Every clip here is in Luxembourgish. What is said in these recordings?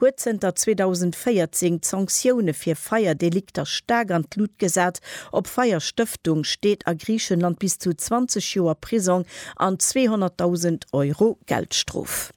huet zënter 2014 d'Sanktioune fir Feierdelikter staark an d'Lut gesat. Op Feierstëftung steet a Griichenland bis zu 20 Joer Prisong an 200.000 Euro Geldstrof.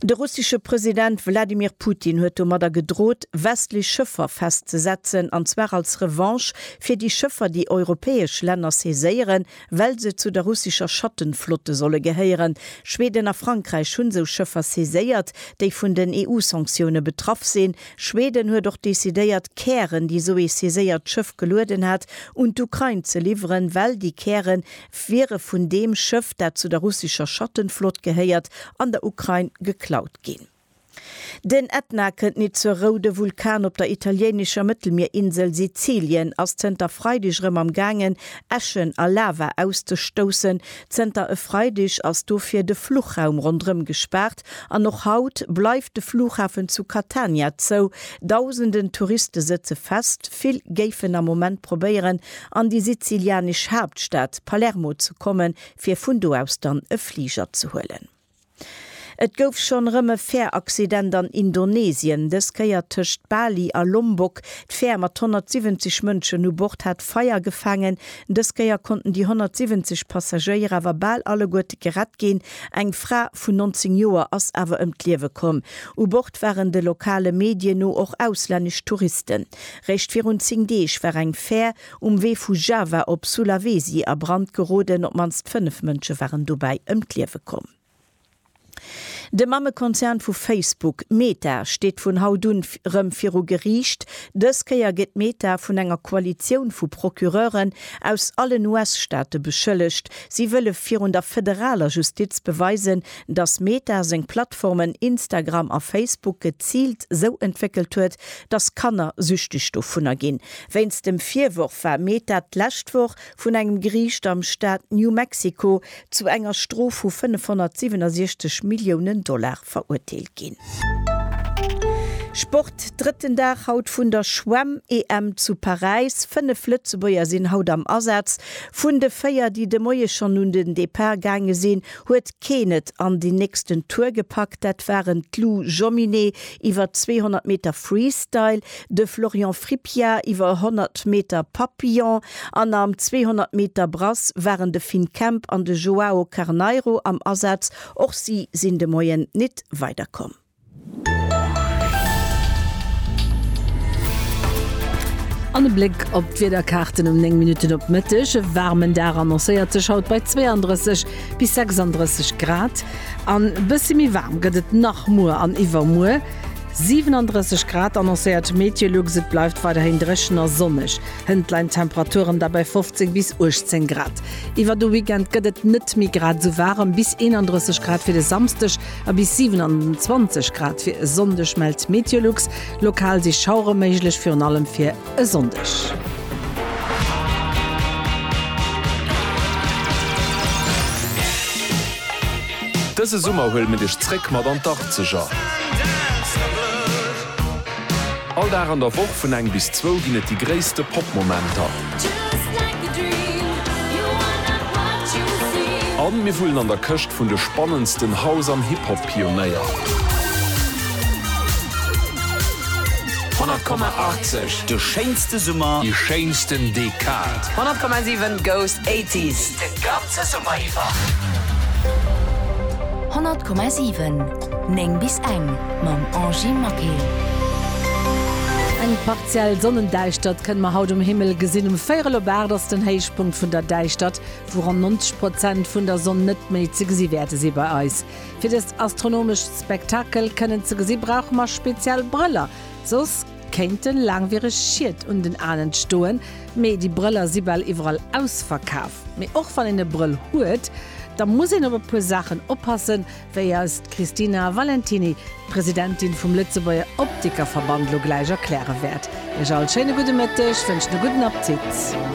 De russesche President Wladimir Putin huet domadder gedroht, westlech Schëffer festzesetzen, an zwar als Revanche fir déi Schëffer, déi europäesch Länner saiséieren, Well se zu der russescher Schattenflotte solle gehéieren. Schweden a Frankräich hunn sou Schëffer saiséiert, déi vun den EU-Sanktioune betraff sinn. Schweden huet och decidéiert, Kären, déi sou ee saiséiert Schëff gelueden hat, un d'Ukrain ze liwweren, well déi Käre wiere vun deem Schëff, dat zu der russescher Schattenflott gehéiert, an der Ukrain geklaut ginn. Den Etna kënnt nitt zur Rou. De Vulkan op der italiéinescher Mëttelmierinsel Sizilien ass zënter Freideg erëm am gaangen, Äschen a Lava auszestoussen. Zënter e Freideg ass dofir de Fluchraum ronderëm gespaart an och haut bleift de Flughafen zu Catania zou. Dausenden Touriste sëtze fest. Vill géifen am Moment probéieren, an déi sizilianesch Haaptstad Palermo ze kommen, fir vun do aus dann e Fliger ze huelen. Et gouf schonn erëm e Fäeraccident an Indonesien, dës Kéier tëscht Bali a Lombok. D'Fäer mat 170 Mënschen u Bord hat Feier gefaangen. Dës Kéier konnten déi 170 Passagéier awer bal alleguerte gerett ginn. Eng Fra vun 19 Joer ass awer ëm d'Liewe komm. U Bord waren de lokale Medien no och auslännesch Touristen. Réischt virun 10 Deeg war eng Fäer Um Wee vu Java op Sulawesi a Brand geroden, op d'mannst 5 Mënsche waren dobäi ëm d'Liewe komm. De Mammekonzern vu Facebook, Meta, steet vun haut un rëm viru Geriicht. Dës Kéier gëtt Meta vun enger Koalitioun vu Procureuren aus allen US-Staate beschëllegt. Si wëlle virun der federaler Justiz beweisen, datt Meta seng Plattformen Instagram a Facebook geziilt sou entwéckelt huet, datt Kanner süchteg dovunner ginn. Wéinst dem Virworf war Meta d'lescht Woch vun engem Geriicht am Staat New Mexico zu enger Strof vu 567 Milliounen Dollar verurteelt ginn. Sport, Drëtten Dag haut vun der Schwemm-EM zu Paräis. Fënnef Lëtzebuerger sinn haut am Asaz. Vun de véier, déi de Moie schonn un den Depart gaange sinn, huet keen et an den nächsten Tour gepackt. Dat waren d'Lou Jomminet iwwer 200 Meter Freestyle, de Florian Frippier iwwer 100 Meter Papillon an am 200 Meter Brass waren de Finn Kemp an de Joao Carneiro am Asaz. Och si sinn de Moien nit weider komm. An e Bléck op d'Wiederkaarten um 9 Minutten op Mëtteg. E waarmen Dag annoncéiert sech haut bei 32 bis 36 Grad. An e bësse méi waarm gëtt et nach muer an iwwermuer. 37 Grad annoncéiert d'Meteolux, et bleift weiderhin dréchen a sonneg. Hënt leien d'Temperaturen da bei 15 bis 18 Grad. Iwwer de Weekend gëtt et net méi grad esou waarem, bis 31 Grad fir de Samsdeg a bis 27 Grad fir e Sonndeg mellt d'Meteolux. Lokal si Schauere méiglech, virun allem fir. e Sonndeg. Dëse Summer huele mir dech zréck mat an d'Arzeger. All Dag an der Woch vun eng bis zwou ginn et déi gréisste Pop-Momenter. A mir wullen an der Këscht vun de spannendsten House an Hip-Hop. Pionéier. 100,80, De schéinste Summer. Déi schéinsten Dekad. 100,7, Ghost Eighties, De ganze Summer iwwer. 100,7, 9 bis eng, Mam Angie Maquet. Eng partiell Sonnendäischtert kënne mer haut um Himmel gesinn. Um Véierel op 8 ass den Héichpunkt vun der Däischtert, wou ronn 90 Prozent vun der Sonn net méi ze gesi wäerte si bei eis. Fir dëst astronomescht Spektakel kënnen ze gesi brauche mer speziell Brëller, soss kéinte laangwiereg Schied un den Aen entstoen. Mee déi Brëller si bal iwwerall ausverkaf. Mee och wann een e Brëll huet, da muss een op e puer Saachen oppassen, wéi eis d'Christina Valentiny, d'Presidentin vum Lëtzebuerger Optikerverband, lo gläich erkläre wäert. Iech all schéine gudde Mëtteg, wënschen e gudden Aptitt.